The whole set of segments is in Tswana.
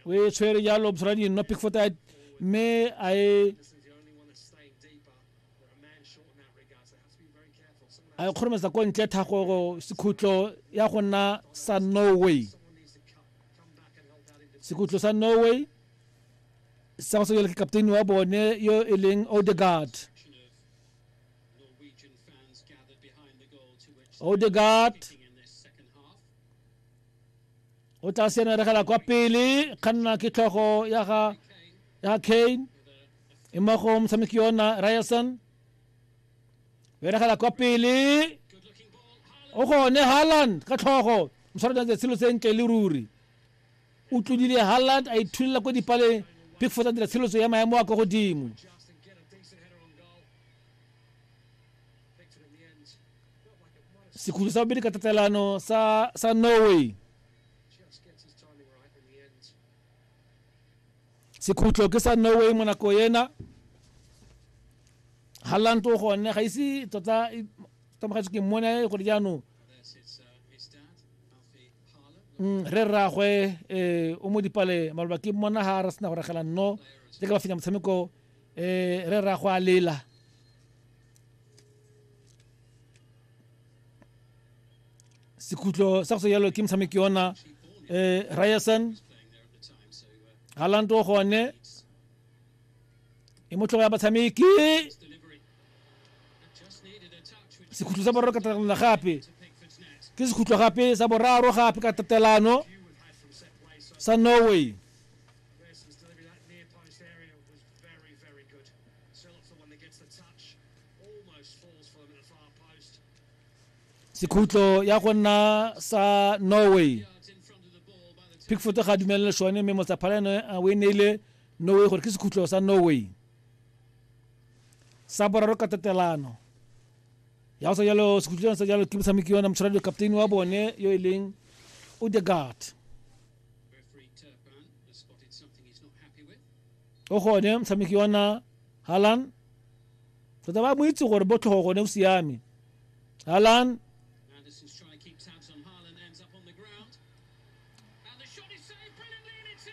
o e tshwere jalo bosra di nno pickford a mme a e a e kgorometsa ko ntle thago sekhutlo ya go nna sa norway sekhutlo sa norway sa go sekele ke captain wa bone yo e leng odegard odegard o tla senaregela kwa pele kganna ke tlhogo ya ga ya kane e mo go motshameki yona ryerson beregela kwa pele o gone harland ka tlhogo moswara jang tshelo sentle le ruri o tlodile harland a ithulela ko dipaleng pickford a dira tsheletso ya maemo a kwa godimo sekhutlho sa bobedi ka tatelano sa, sa norway sekhutlo ke sa norway mo nako ena halland o gone ga ise tota e- tomagetse ke mmone gore jaanong Mm, re rragwe um o mo dipale maloba ke mmona ga re sena go ragela nno le ka ba fenya motshameko eh re ra go a lela sekhutlo sa go se jalo ke motshameki yona um ryerson galand o gone e motlhogo ya batshameki sekhutlo sa boraro ka tatelano gape ke sekhutlo gape sa boraro gape ka tatelano sa norway Grayson's delivery, that near post area was very, very good. Sillops the one that gets the touch, almost falls for them at the far post. sekhutlo ya go nna sa norway Yards in front of the ball by the time pickford ga a dumelele sone mme motsaphala ene a o e neile norway gore ke sekhutlo sa norway sa boraro ka tatelano ya go sa jalo sekhutlo sa jalo ke motshameki yona motshwaradi captain wa bone yo e leng odegard o gone motshameki ona halan tota ba mo itse gore botlhogo gone o siame halan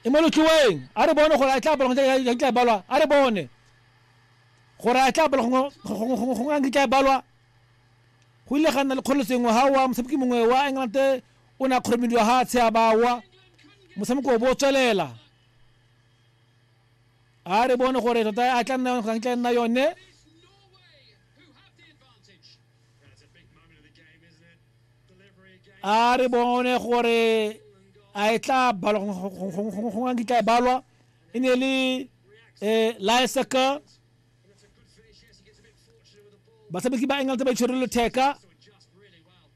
e mo lotlhiweng a re bone gore a tla balwa ya tla balwa a re bone gore a tla balwa go ngang tla balwa go ile ga nna le kgolo sengwe ha wa motshameki mongwe wa england o ne a kgoromediwa ga a tshe a bawa motshameko o bo o tswelela a re bone gore tota a tla nna yone tla nna yone a re bone gore a e tla balwa gongwe nkitla e balwa e ne le um liseca batshameki ba england ba itshwerele theka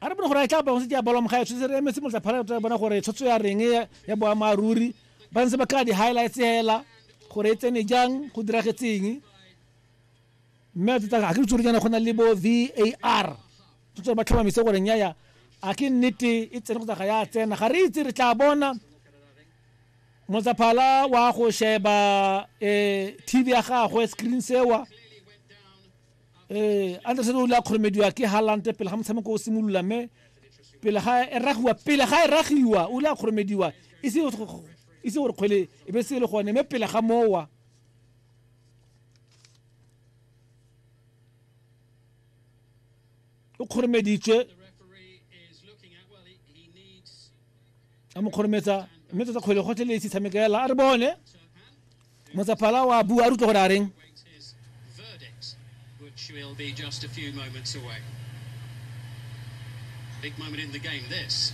a re bone gore a tla bangwe se tsa balwa mogae tshwetse re emetse motla phala tla bona gore tshotso ya reng ya boa maruri ba ntse ba ka di highlights hela gore e tsene jang go diragetseng mme a tsa ga ke tsore jana go na le bo VAR tshotso ba tlhomamise gore nyaya a ke nnete e tsene go tsa ga ya tsena ga re itse re tla bona motsaphala wa go sheba eh tv ya gagwe screen sewa ee anderson o ile a kgoromediwa ke halante pele ga motshameko o simolola mme pele ga e ragiwa pele ga e ragiwa o ile a kgoromediwa e se gore kgwele e be se e le gone mme pele ga mowa o kgoromeditswe a mo kgorometsa mme tsatsa kgwele gotlhe le esi tshameka ela a re bone motsaphala wa bua a rutlwa gore a reng will be just a few moments away. Big moment in the game, this.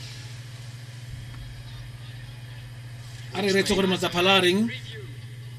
a re retse gore matsaphala a reng